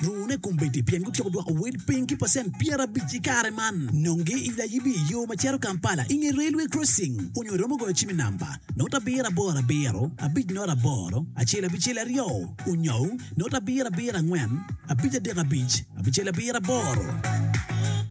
Rune kombeddi pien gutyeko dwoko wel piny ki pacent pyerabic i kare man. Nonge i layibi i yo ma cito Kampala i nge Railway Crossing onyo iromo goyo cim i namba, note abiro aboro abiro, abic note aboro, acel abicel aryo, onyo note abiro abiro angwen, abic adek abic, abicel abiro aboro.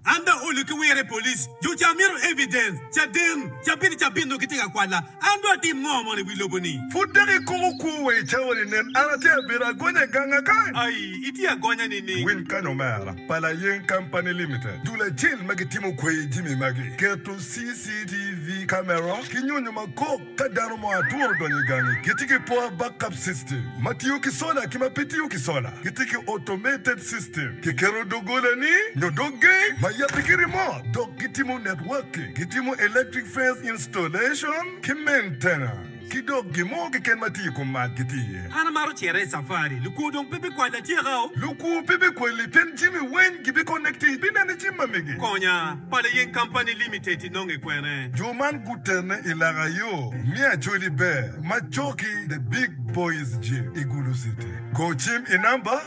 An dong olu ki wire police, jo ca mito evidence, caden, cabit cabit nongo gitye ka kwala. An dong atim ngo mono i wi lobo-ni? Pud dok ikumo kwo wa i cawani? Nen, an atye abedo agonya i ganga kany. Ai, itye agonya nining? Winy kany omera, pa Layeng Company Limited, dul acel ma gitimo kweyo jimi magi, keto CCTV camera ki nyonyo ma kok ka dano mo aturo donyo i gangi. Gitye ki power backup system ma tiyo ki sola ki ma pe tiyo ki sola. Gitye ki automated system, kiketo dogolani nyo dog geng ma yabbe ki remote, dok gitimo networking, gitimo electric fence installation, Installation ki maintenance ki dok gin mo keken ma tye i kom mac gitye iye. An amaro cito i safari. Lukwo dong pe bikwalla atyeka o. Lukwo pe bikwalli pien jami weng gibikonekti. Ibinene cim ma mege. Konya, Pala Yeng Company Limited inonge kwene? Jo man gutene i laka yo me Acholi Bear ma coki The Big Boys Gym i Gulu City. Go cim i namba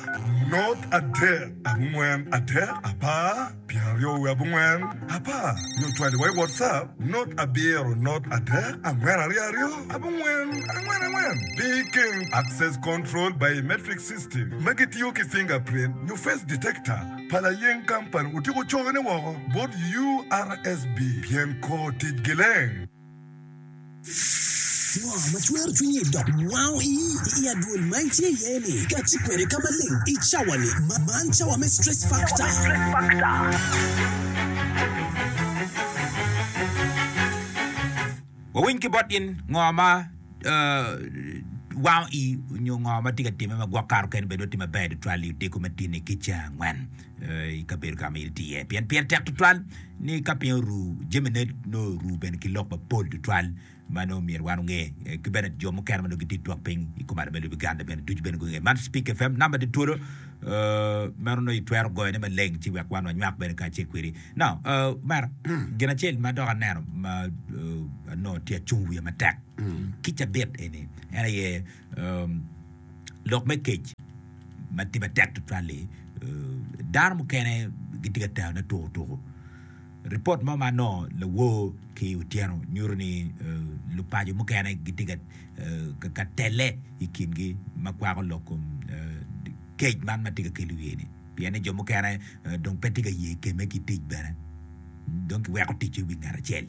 nurt adek angwen adek apar. Pyen aryo wiye abongwen apar nyo cwaliwa i WhatsApp not abiro not adek angwen aryo aryo abongwen angwen angwen pi ikeng Access Control Biometric System ma gitiyo ki fingerprint nyo face detector pa layeng company otyeko cone woko bot URSB pyen kor ticgi leng. ma twero cwinyi dok wango i i adwol ma itye iye ni kaci kwede ka maleng i cawani ma man cawa me stress factor wawiny ki bot gin ngo ma eh, wango i nyo ngo ma tye ka timme ma gwok kato kene bene dong tye maber tutwal i odiko me tin i kica angwen i kabedo ka ma in itye iye, pien pire tek tutwal ni ka piny oru, jamine nongo oru bene ki lok mapol tutwal ma nongo myero wan onge. Ki bene jo mukene ma nongo gitye twak piny i kom ada me lobo Uganda bene ducu bene gungeyo. Man Speak FM, namba tye twolo, meno nongo itwero goyone maleng ci wek wan wanywak bene kacel kwedi. Now, omera, gin acel ma dok aneno ma nongo tye acung wiya matek ki cabit eni en aye Lok me kec ma tye matek tutwal-li, dano mukene gitye ka terne tukutuku. Ripot mo ma anongo lawor ki Otyeno nyuto ni lupaco mukene gitye ka telle i kingi ma kwako lok kom kec man ma tye ka kel i wiye-ni pien ni jo mukene dong pe tye ka ye kemme ki tic bene, dong kiweko ticce i wi ngat acel.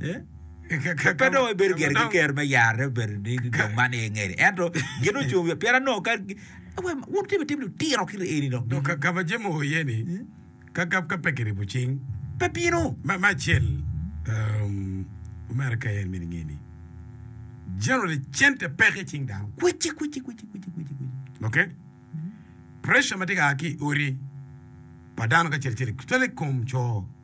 Pe dong ebedo gire ki ker me yarre obedo ni dong man aye ngede. Ento gin ocung wi pien anongo ka wun timo itim lutino kit eni dok. Dong kagab ajemo iye ni kagab ka pe kiribo cing. Pe bino. Me acel America aye en miti nge ni generally cente peke icing dano. Kwici kwici kwici kwici kwici kwici. Okay? Pressure ma tye ka a ki i odi pa dano kacel cel especially kom co.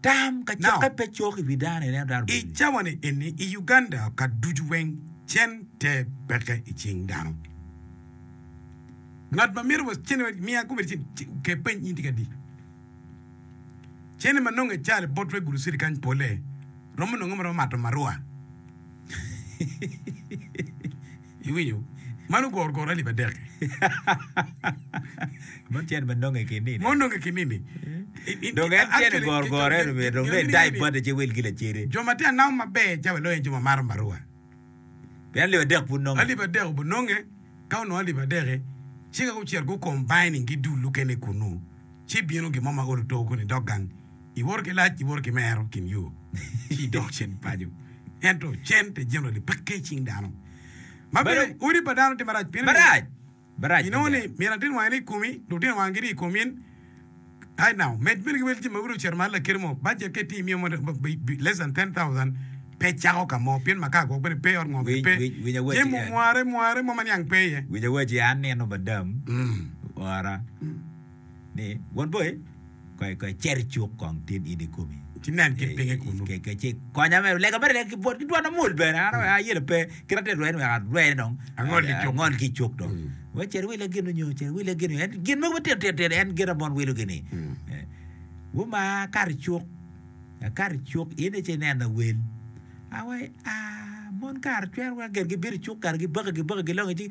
Tam ka cokke pe cok i wi dano i neno dano bene. I cawani eni i Uganda ka ducu weng cen ter peke i cing dano. Ngat ma mito wa cene wek miya kobedi cen oke peny in tye ki adi. Cene ma nonge cali bot wek guluciri kany pole romo nonge ma romo mato marua. Iwinyo? Man ogoro goro alip adek-ki. Mon tyen ma nonge ki nini? Mon nonge ki nini? Dong en tyen i goro goro eno myero dong nongo etai bate ci ewil ki lacede. Jo ma tye ka namo maber ca welo aye jo ma maro maruwa. Pien alip adek pud nonge. Alip adek obu nonge, ka onongo alip adek-ki, ci ka gucito gu-combining-gi dul lukene kunu, ci bino gin mo ma olo too kunu i dog gang I woto ki lac iwoto ki mero kin yo ci idok cen paco. Ento cen te generally pekke i cing dano. Ma bene Balo- odi pa dano tye marac pien ni Barac. Barac. inongo ni adada. myero latin wange ni i komi, lutino wange gini i komi. Right now, med bene ki wel jami ma gudo cito malo lakiri mo, budget ka itye imiyo mo ma- ma- ma- less than 10,000 pe cako ka mo pien makar gwok bene pe, ot ngo bene Winy- pe. winy- winy awaci Jemo en. mware mware mo ma niang pe iye. Winyo awaci an nino madam Mm. ora ni, Wod boi, koy koy cer icuk kong tin in ikomi. Ci nen kit pinye kunnu. Ke ke ci konya me lega mere ki bwot ki dwon amul bene an mm. ayelo pe ki rate rwen wek arwene dong angol ki cuk angol ki cuk dong mm. we cer wile gin onyo cer wile gin en gin mo betir tir tir en gin amon wilo gini mm. eh. wo ma kar cuk kar cuk in ci nena wel awe a ah, mon kar twer wa gen gi biri cuk kar gi baka gi baka gi longi ci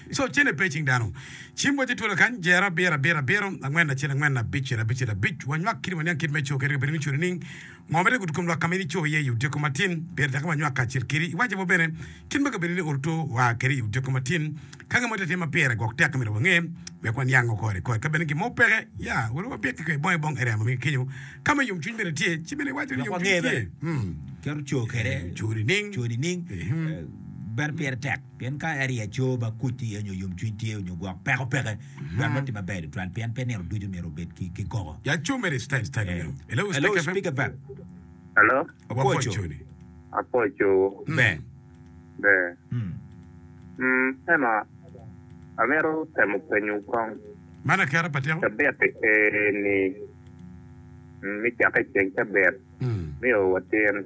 Co cene pe i cing dano. Cim wacce twolo kany, jero, abiro, abiro, abiro, angwen, acel, angwen, abicel, abicel, abic. Wanywak kit waniang kit me co kadi ka bedo ni codi nining. Ngo ma tek ogudo kom lwak ka ma in ico iye i otyeko matin? Pire dakiwa nywak kacel kedi. Iwacce bot bene kit ma ka bedo ni oro two waa kede i otyeko matin. Ka gin mo tye atima pire gwok tek myero wange wek waniango kore kore. Ka bene gin mo peke, ya welu wabik ki kwe bong i bong area ma mege kenyo ka ma yomcwiny bene tye. Ci bene iwacce ni Lok yomcwiny wange bene tye. kit oco kede Codi nining? codi nining. Bene pire tek. Pien ka aryeco ma kuc iye nyo yomcwiny tye nyo gwok peko peke, dwan me tim maber litwal, pien pe nino ducu myero obed ki kikoka. Hello, speaker bab. Hello. Wapwoco ni. Apwoco wu. Ber. Ber. Mm, ento amito temo penyo wu kong. Man aketa pa teko. Cabit ee-ni, me cakke ceng cabit, miyo watyen.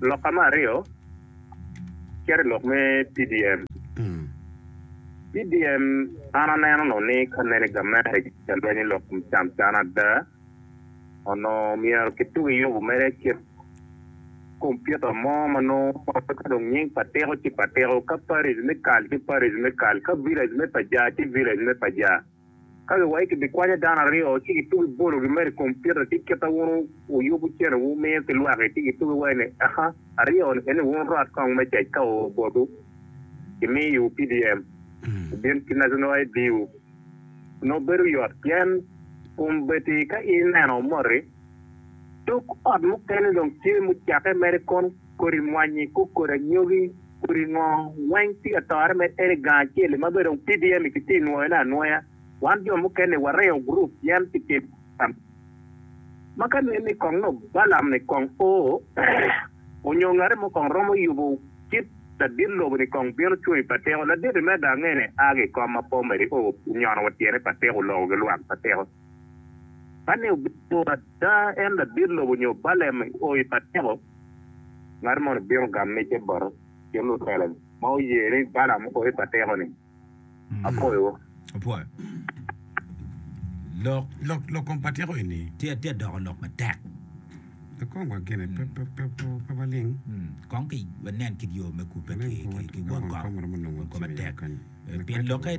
Loka me aryo cito i lok me PDM. PDM an aneno nongo ni ka nene gamente gica lweny i lok me cam can ada, onongo myero kituk i yubu mere kit kompiuta mo ma nongo ka dong nying pa tiko ci pa tiko, ka parish me kal ci parish me kal, ka village me paja ci village me paja. Ka giwaco ki bikwanyo dano aryo ci gitugo i bolo gi mere i kom pita ci kita wun wuyubu cene wu miyo ki lwaki ci gitugo i wai ni aha aryo ni eni wun rot kong me cec ka oo botu ki miyo i wu pdm i bin ki national ID wu noo bedo yot pien kom beti ka ineno moti tuk ot mukene dong tye mucake mere kong kodi mwanyi, kuk kodi anyogi, kodi ngo weng tye ka tore med ene gang acel-li ma bene dong PDM-mi ki tye nwoyo ne anwoya. Wan jo mukene wa reyo gurup yen pi timo tam ma ka nen ni kong nongo Balam ni kong o onyo ngate mo kong romo yubo cit ladit lobo ni kong bino cwoyo pa teko. Ladit-ti me gang ene a ki ikom ma po meri o onyono wa tyene pa teko oloko gi lwak pa teko ma ni obino. Ka en labit lobo nyo balem o i pateko, ngat moni bino gamo micce bote ki lutelo ma oye ni Balam o i pateko ni, Apwoyowu. Apwoyo. Lok, lok, lok kom pateko eni tye, tye doko lok matek. Pe kong wa gene, pe, pe, pe, pe, pe waling. Kong ki wanen kit yo me kubbe ki, ki, ki won kom, won kom atek. Pien lokke.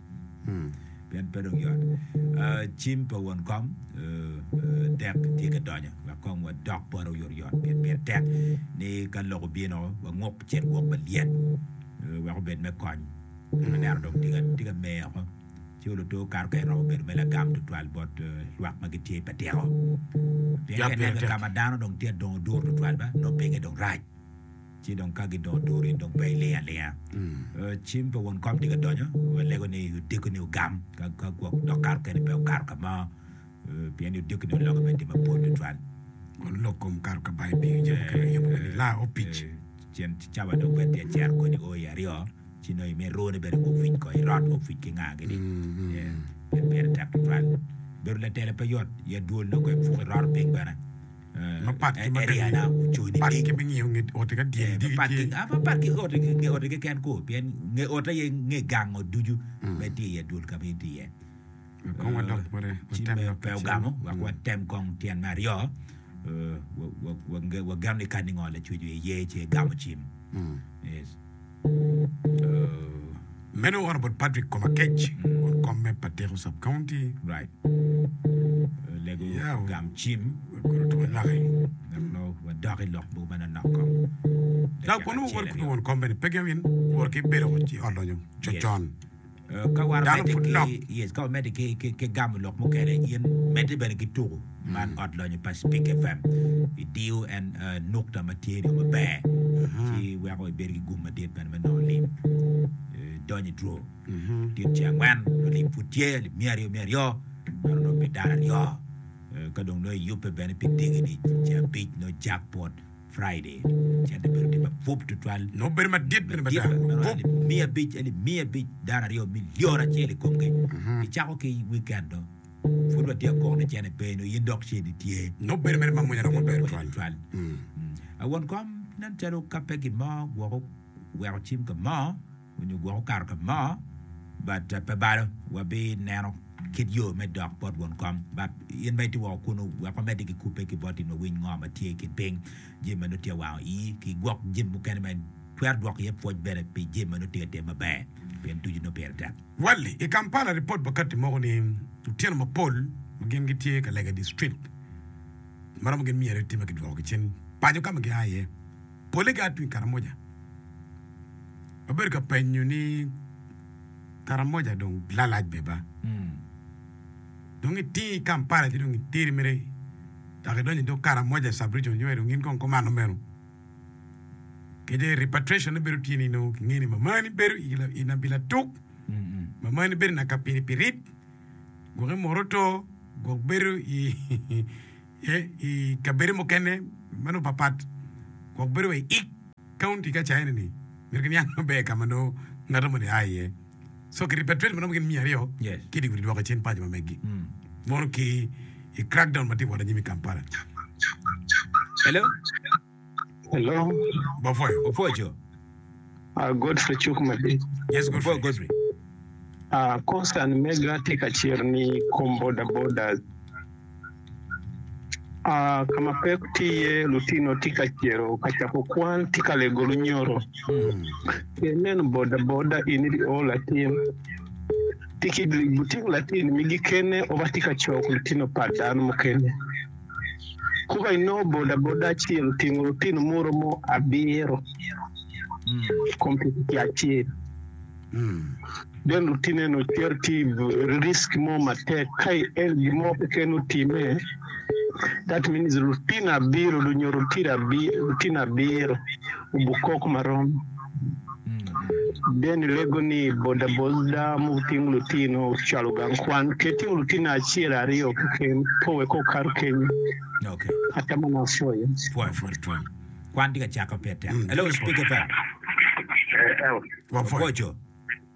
Pien pe dong yot. Cim pa won kom dek tye ka donyo, wek kong wadok bot oyotoyot, pien pire tek ni ka lok obino, wanguk cen gwok malyet, wek obed me kony. Pien aneno dong tye ka mer woko, ci olo to kato kany romo bedo me lagam tutwal bot lwak ma gitye i patiko. Pien ka ineno kit ka ma dano dong tye adongo dur tutwal ba, nongo pinye dong rac. Ci dong ka gidongo duru, in dong pe iling alinga. Cim pa won kom tika donyo, walego ni odiko-ni ogam, ka gwok dok kato kene pe okato ka mo, pien ni odiko-ni oloke me tim mapol tutwal. Won lok kom kato ka bayo pii ocito keken aye yubbe ni laa opic. Cen cawa dong pe tye cero kodi o i aryo, ci nongo imit rwone bene gupic ko i rot, opic ki nga gini, pien pire tek tutwal. Bedo latela pe yot, ya dwol nongo goyo puk iroto piny bene. Mapat ki ma kingiyo nge ote ka dyeri digi tye. Mapat ki nge ote keken ko, pien nge ote aye nge gang ot ducu ma itye iye, dul ka ma itye iye. Ci pe wugamo, wek watem kong tyen me aryo, Wageno ni kadi ngo lacwec wiye ye, ci egamo cim. Meno oro bot Patrick koma kec kun komme pa tiko sub county. Right. Lego Yeah. gam cim Koro to laki. dok lo wadok i lok boma na nok kong. Dok kono wor kudu won kombe ni pegi awin wor ki bedo ci olonyo Yes. cocon. Dano pud nok. Ka wamedde ki gamo lok mukene, in medde bene ki tuko man Ot Lonyo pa Spik FM. Idiyo en nukta ma tye dong maber, ci weko ibedo ki gum madit bene me nongo lim. Idonyo i draw. Tit ce angwen, nongo lim pud tye, lim miya aryo miya aryo, meno nongo pi dano aryo. Ka dong nongo iyubbe bene pi dingini, ce abic, nongo jackpot, Friday, cente bedo gin mapwop tutwal. Nongo bedo madit bene mada. Madit bene romo alip miya abic, alip miya abic, dara aryo, milion acel i komgi. Icako ki weekend do, pwod watye akok ni cente pe, nongo in dok ceni tye. Nongo bedo mere mamwonya dok maber Mwonya tutwal. tutwal. Won kom, nen calo ka pe gin mo gwoko weko cim ka mo, Onyo gwok okato ka mo but pe balo wa bi neno kit yo me dok bot won kom but in ma itye woko kunu wek wa medi ki kubbe ki boti nwa winy ngo ma tye i kin piny jami ma nongo tye awango ii ki gwok jami mukene ma itwero dwoko iye pwoc bene pi jami ma nongo tye ka timo maber pien ducu nongo pire tek. Wally, I Kampala ripot pa katti moko ni lutino mapol ma gin gitye ka lego i distrik ma romo gin myero eti ma kidwoko ki cen paco ka ma gia iye. Pole ga atwing Karamoja wabedo ka penyo ni Karamoja dong lalac be ba? Dong itingi Kampala ci dong iteri mere dok idonyo idog Karamoja sub-region yo dong gin kong kumano meno. Kece repatriation-ne bedo tye ni nongo kingeyo ni mamani bedo i la- i nabi latuk, mamani bedo i Nakapini pi rip, gwok i Moroto, gwok bedo i Tye i kabedo mukene ma nongo papat gwok bedo wa i ik kaunti ka caine ni myero giniang maber i ka ma nongo ngato moni a iye. So ki repatriate ma romo gin miya aryo Yes. ki dye gudi dwoko i cen paco ma megi mono ki i crackdown ma tye ka wot anyim i Kampala. Hello? Hello, Bapwoyo. Opwoco. ah, Godfrey cuk madit. Yes, Bapwoyo Godfrey. Godfrey. Ah, concern mega tye ka cer ni kom boda bodas. Ah, ka ma peko tye iye lutino tye ka cero ka cako kwan ki ka lego lunyoro. Mm. Ka ineno boda boda in idi o latin tye ki lutino latin migi kene oba tye ka cok lutino pa dano mukene. Kuba inongo bodaboda acel otingo lutino muto mo abiro kom pikipiki acel. Then lutine no cito ti risk mo matek ka el gin mo keken otime that means lutino abiro nyo lutino abiro obu kok marom. Denny lego ni bodaboda mutingo lutino cwalo gang kwan ki tingo lutino acel aryo keken pe wek okato kenyo. Okay. Ata man apwoyo. Pwoyo pwod twon. Kwan tye ka cakke pe tek. Hello, Speak FM. Wapwoco.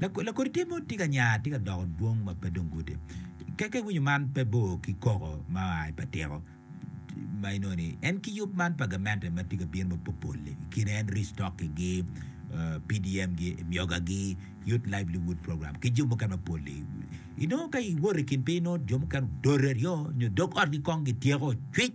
Lakodi tye mo tye ka nya, tye ka doko dwong ma pe dong gudi. Ka ka iwinyo man pe bor ki koko ma oa i patiko ma inongo ni en ki yub man pa gamente ma tye ka bino ma popol-li i kine en restocking-gi, PDM-gi, myogagi, Youth Livelihood Program ki jo mukene mapol-li. Inongo ka iwoto i kin piny inongo jo mukene odore aryo nyo dog otgi kong gityeko cwic.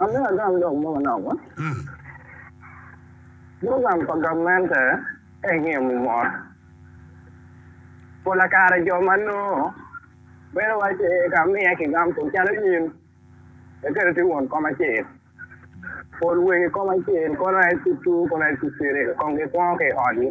Ame agam dok mo manok ma. Program pa gamente en yemo mot. Pola kare jo ma noo bedo waci ka miye ki gam tung calo in eketo ti won kom acel. Pol wegi kom acel kono en tutu kono en tutire kong gikwongo ki i ot gi.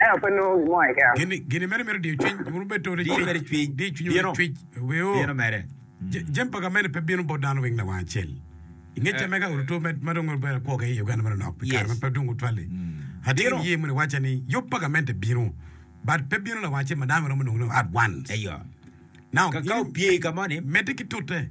Ento pe nongo gin mo keken. Gin ni meno mito diyo cwiny. Wun wubed to ni cwiny. Diyo cwiny wunu ni cwiny. Bino mere. Jami pa gamente pe bino bot dano weng lawang acel. I nge camme ka oruto ma dong obedo akwo keken i Uganda meno nok pi kare ma pe dong otwal-li, atinge niye moni wacca ni yub pa gamente bino, but pe bino lawang acel ma dano giromo nongo ni at once. Now, in medde ki tute.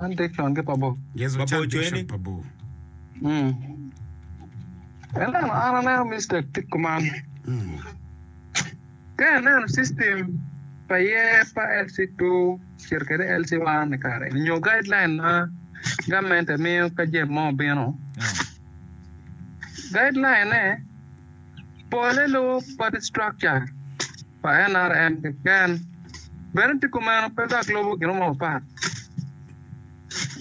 Ante kyon ki pa bor. Yesu Ba bor coyo ni. pa bor. Mm. Ineno, an aneno mistake tye kuman. Ka ineno system pa yer pa LC2 cito kwede LC1 i kare eni nyo guideline ma gamente miyo ka jami mo obino, guideline-ne pole lubo party structure. pa NRM keken bene tye kumeno pe dok lubo gin mo mapat.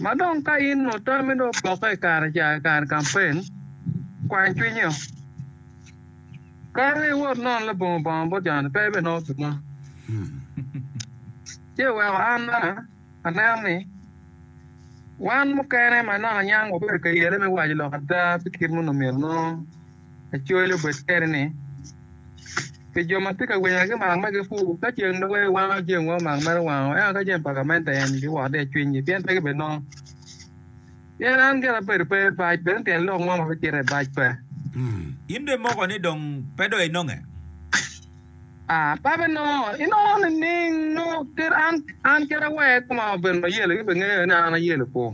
Ma dong ka in onongo tammi dong opokke i kare ca i kare kampen, kwany cwinyi o. Kato iwot inono labongo bongo bot joni pe ibinongo gin mo. Ci iweko an bene anen ni wan mukene ma inongo anyang wabedo ka yele me waco lok ada pi kit ma onongo myero onong. Acoya obed kene ni, Pi jo ma tye ka winyo ki mak ma gipur, ka ceng dogge giwango jami mogo mak mere owango, ento ka jami pa gamente en giwot i acwinygi, pien pe gibinongo. Pien an gin abedo pe bac, bene tyen lok mo ma bicito i bac pe. In bene moko ni dong pe dong inonge? A, pe abinongo. Inongo nining? Nongo kit an, an kit awer koma obedo mayelo, in bene ingeyo ni an ayelo-pu.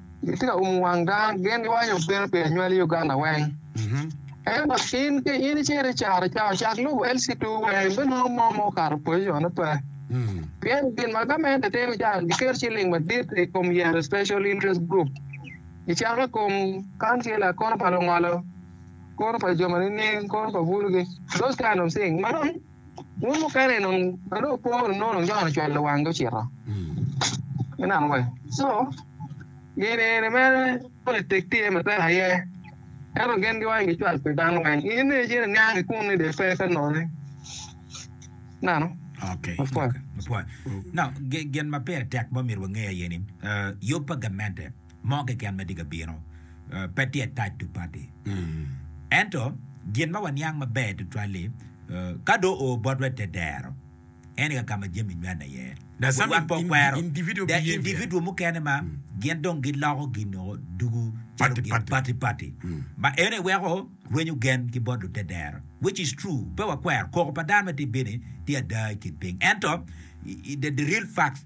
Gitye ka umo wang dano, gin giwaco obino pi anywali i Uganda weng. Ento in ka in icito i caro ca, cak lubo LC2 weng ibinongo mo ma okato pozicone pe. Pien gin ma gamente timo ca, giketo ciling madit i kom yero special interest group, gicako i kom kancila, kore pa lungolo, kore pa jo ma nining, kore pa bulugi, those kind of thing. Wun mukene dong ka dong opo wunu nongo dong Jon ocwelo wanggi ocito. Me neno wa. So, gin eni mere politik tye matek aye. Ento gin giwaco gicwal pi dano weng. In ni icito iniang i kunu ni dong ipe ka noni. Nano. Okay. Mapwony. Okay. Mapwony. Now, gi- gin ma peya tek ma omyero wange aye ni eh, yub pa gamente mo keken ma tye ka bino pe tye attached to party. Ento gin ma waniang maber tutwal-li, ka do oo botwa i te dero, en aye ka ma jami nywanne iye. Wan pe wakwero the individual mukene ma gin dong giloko gin o dugu calo gin party party, ma eno aye weko rwenyo gen ki bot lute dero, which is true. Pe wakwero, koko pa dano ma tye bini tye ada i kin piny. Ento the real facts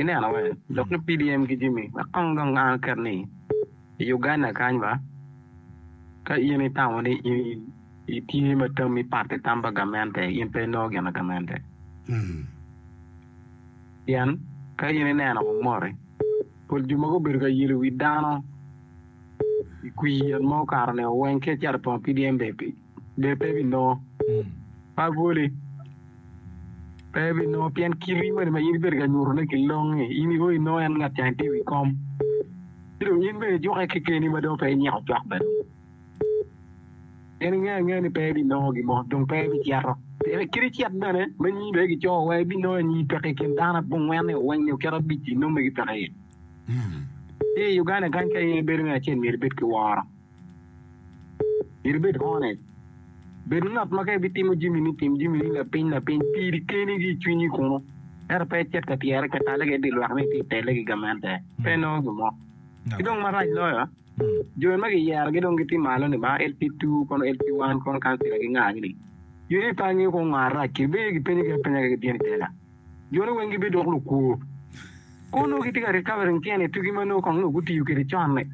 Ineno wai lok ni PDM ki Jimmy wek kong dong an aket ni i Uganda kany ba ka in itamo ni in itye ma tammi pat ki tam pa gamente in pe inongo gin na gamente. Pien ka in ineno kong moti pol jo ma gubedo ka yelo wi dano i kwi yen ma okato nio weng ki acito i pongo PDM bene pi Lee pe ebinongo. Ma bwoli pe ebinongo pien kiti moni ma in ibedo ka nyutone ki longi in iwor inongo en ngat cang itye i wi kom. Ci dong in bene ijukke kekeni ma dong pe inyiko cwak bene. Pien ingeyo angea ni pe ibinongo gin mo dong pe ibicito. Pien kit icit bene ma nyi bene kicoyo wa ibinongo anyi peke i kin dano abongwen-ni oweng-ni oketo abic-ci nongo megi peke iye. Ci i Uganda kany ka in ibedo me acel myero ibed ki woro. Myero ibed honest. Bed ngat ma ka ibitimo jamini, tim jamini lapiny lapiny piri keni ki i cwinyi kunu, ento pe icit ka tyere ka talle ki i dye lwak ni itye ka telle ki i gamente. Pe inongo gin mo. Ki dong marac loyo, jo ma kiyerogi dong gitye malo ni baa LP2 kono LP1 kono kancila gingayogi ni, In ipanyo woko ngo arac kiri? Bed aye gipenyogi apenya ka gibino i tela. Joni weng gibedo dok lukwo. Kong nongo gitye ka recovering tyen i tugi ma nongo kong nongo gutiyo kwede con-ni.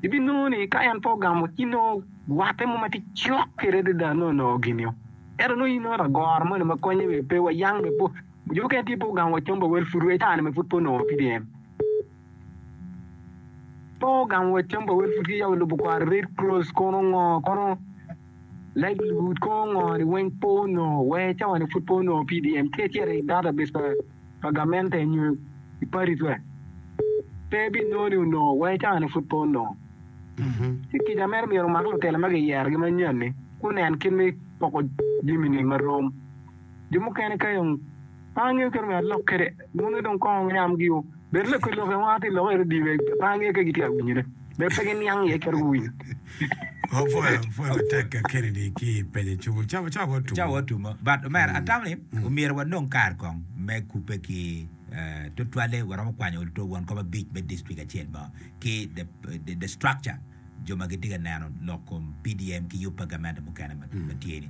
Ibinongo ni ka en pe ogamo ci nongo watte mo ma tye cok kwede adada nongo nongo gin-nio. Ento nongo in nongo lagoro moni ma konye bene pe wa yang bene po. Jo mukene tye pe ogamo wa com pa wel pud wa icaa-ni bene pud pe onongo PDM. Pe ogamo wa com pa wel pud ki yako lubo kwaro Red Cross kono ngo kono livelihood kono ngo-ni weng pe onongo. Wa icawa-ni pud pe onongo PDM. Tye acel i database pa pa gamente nyo i padi pe pe binongo ni onongo wai cangane pud pe onongo. Ci kica meno myero omak lutela ma giyerogi manyen-ni gunen kit me poko jami-ni ma rom. Jo mukene kayo ongo pe angeyo kit myero alok kwede, moni dong kongo ongo yam giyo. Bed lok ki lok, en wang aye ti lok i redio pe angeyo ka gitye ka winyone. Bed pe giniang iye calo guwinyo. Apwoyo apwoya matek ka Kennedy ki i penye cwung. Cawa cawa wa Cawa wa Tumo. Tumo. But omera, atamo ni omyero wanong kare kong me kubbe ki eh, tutwalle waromo kwanyo ol to won kom abic me district acel mo ki the the the structure jo ma gitye ka neno lok kom PDM ki yub pa gamente mukene ma ma tye ni.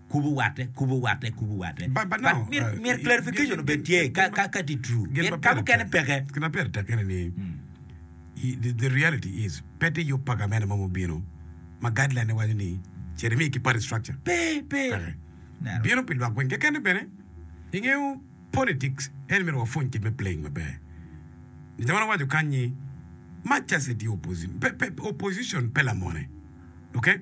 Kubu watte, kubu watte, kubu watte. But myero clarification obed tye ka ka tye true. Pien ka mukene peke. Gin ma pire tek ene ni the reality is pe tye yub paga mene mo ma obino ma guideline ne waco ni cer imi ki party structure. Pe, pe. Peke. Bino pi lwak weng kekene bene. Ingeyo politics en myero wapwony kit me playing maber. Nitha wan owaco kany ni much as it ye opposition pe pe opposition pe lamone. Okay?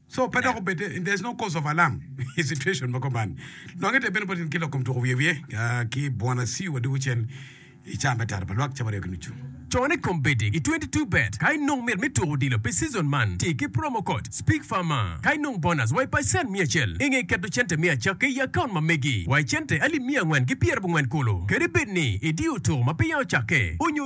Co pe dok obed ni there's no cause of alarm i situation ma kuman. Nongo ite bene boti ni ki lok kom tuko wiye wiye ki Bwana Siu wa dugu cen i caa me tara pa lwak cabo aryo ki nucu. Co ni kombeddi i 22 bet ka inong mit me tuko odilo pi season man ti ki promo code Speak Farmer ka inong bonus wa i pacent mia acel inge keto cente me acakke i account ma megi wa i cente alip mia angwen ki pyerabongwen kulu kadi bed ni idiyo tuko ma peya ocakke onyo